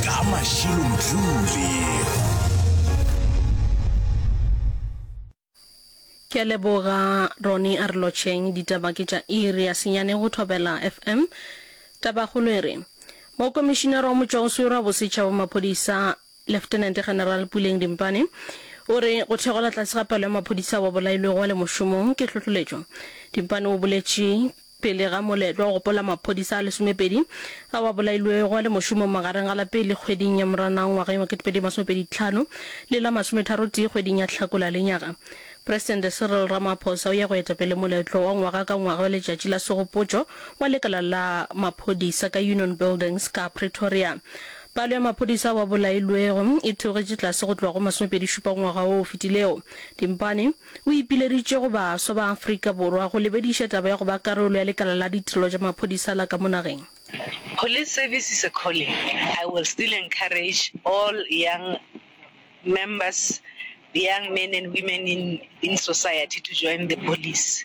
Ka Mashilo Mdluli. Ke a leboga Ronnie a re lotšheng ditaba ke tša iri ya senyane go Thobela FM. Tabakgolo e re, Mokomišinara wa Motšwaoswere wa Bosetšhaba wa Maphodisa Leftenente General Puleng Dimpane o re go theogela tlase ga palo ya maphodisa ao a bolailwego a le mošomong ke tlhohloletšo. Dimpane o boletše Pele ga moletlo wa go gopola maphodisa a lesomepedi ao a bolailwego a le mošomong magareng ga la pele kgweding ya Moranang ngwageng wa 2025 le la masometharotee kgweding ya Hlakola lenyaga, Presidente Cyril Ramaphosa o ya go eta pele moletlo wa ngwaga ka ngwaga wa Letšatši la Segopotšo wa lekala la maphodisa ka Union Buildings ka Pretoria. Palo ya maphodisa ao a bolailwego e theogetše tlase go tloga go masomepedi-šupa ngwaga wo o fetilego. Dimpane. o ipileditše go baswa ba Afrika Borwa go lebediša taba ya go ba karolo ya lekala la ditirelo tša maphodisa la ka mo nageng. Police service is a calling, I will still encourage all young members, young men and women in society to join the police.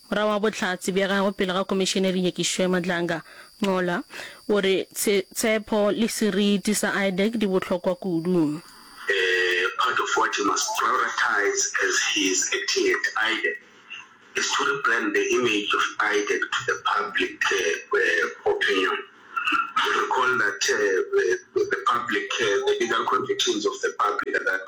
Morwa wa Bohlatse bja gagwe pele ga Komišeneri Nyekišwe Madlanga, Nqola, o re, Tshe, tshepo le seriti sa Idec di bohlokwa kudu. A part of what he must prioritize as he is acting at Idec is to rebrand the image of Idec to the public opinion. You recall that the public, the legal convictions of the public are that,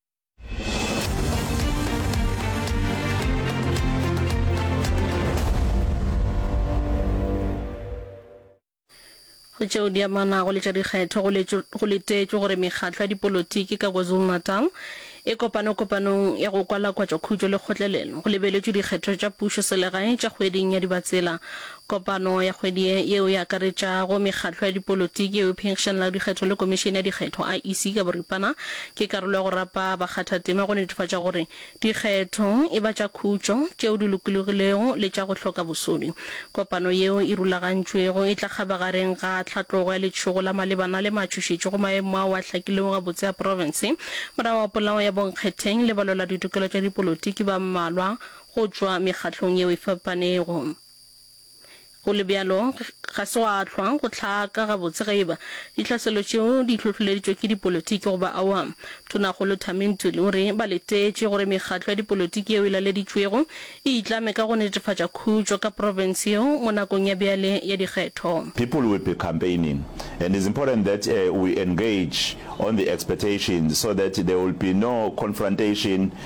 go tšeo di amanago le tša dikgetho go letetšwe gore mekgatlo ya dipolotiki ka kwazulu-natal e kopane kopanong ya go kwalakwatša khutšo le kgotlelelo go lebeletšwe dikgetho tša pušo selegae tša kgweding ya dibatsela Kopano ya kgwedi ye, yeo e akaretšago mekgatlo ya dipolotiki yeo e phenkgišanelago dikgetho le Komišene ya Dikgetho, IEC, ka boripana, ke karolo ya go rapa bakgathatema go netefatša gore dikgetho e ba tša khutšo, tšeo di lokologilego le tša go hloka bosodi. Kopano yeo e rulagantšwego e tla kgabagareng ga tlhatlogo ya letšhogo la malebana le matšhošetšo go maemo ao a hlakilego gabotse a profense morago ga polao ya bonkgetheng le balweladitokelo tša dipolotiki ba mmalwa go tšwa mekgatlong yeo e fapanego. Go le bjalo, ga se gwa hlwa go hlaka gabotse ge eba dihlaselo tšeo di hlohloleditšwe ke dipolotiki goba awa. Tonakgolo Thami Ntuli o re ba letetše gore mekgatlo ya dipolotiki yeo e laleditšwego e itlame ka go netefatša khutšo ka profense yeo mo nakong ya bjale ya dikgetho. People will be campaigning and it's important that we engage on the expectations so that there will be no confrontation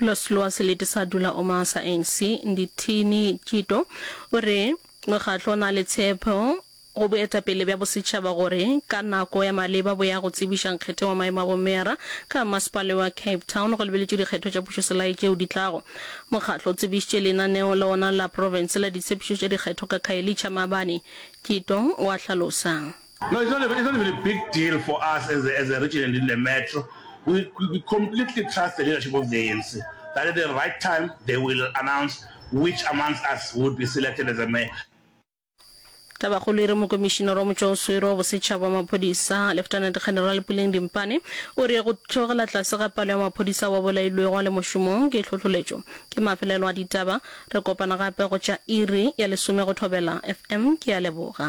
Ulos Lwa Selete sa Dula Oma sa ANC, Ndithini Tjito, o re mokgatlo o na le tshepo go boetapele bja bosetšhaba gore ka nako ya maleba bo ya go tsebiša nkgetheng wa maemo a bomeyara ka mmasepale wa Cape Town go lebeletšwe dikgetho tša pušoselae tšeo di tlago. Mokgatlo o tsebišitše lenaneo la wona la profense la ditshepišo tša dikgetho ka Khayelitsha maabane, Tjito o a hlalosa. No, it's not it's not even a big deal for us as a, as a region and in the metro. We, we completely trust the leadership of the ANC that at the right time they will announce which amongst us would be selected as a mayor. Tabakgolo e re mokomišinara wa motšwaoswere wa bosetšhaba wa maphodisa Lieutenant General Puleng Dimpane o re go theogela tlase ga palo ya maphodisa ba bolailwego a le mošomong ke tlhohloletšo ke mafelelo a ditaba Re kopana gape go tša iri ya lesome go thobela FM. Ke a leboga.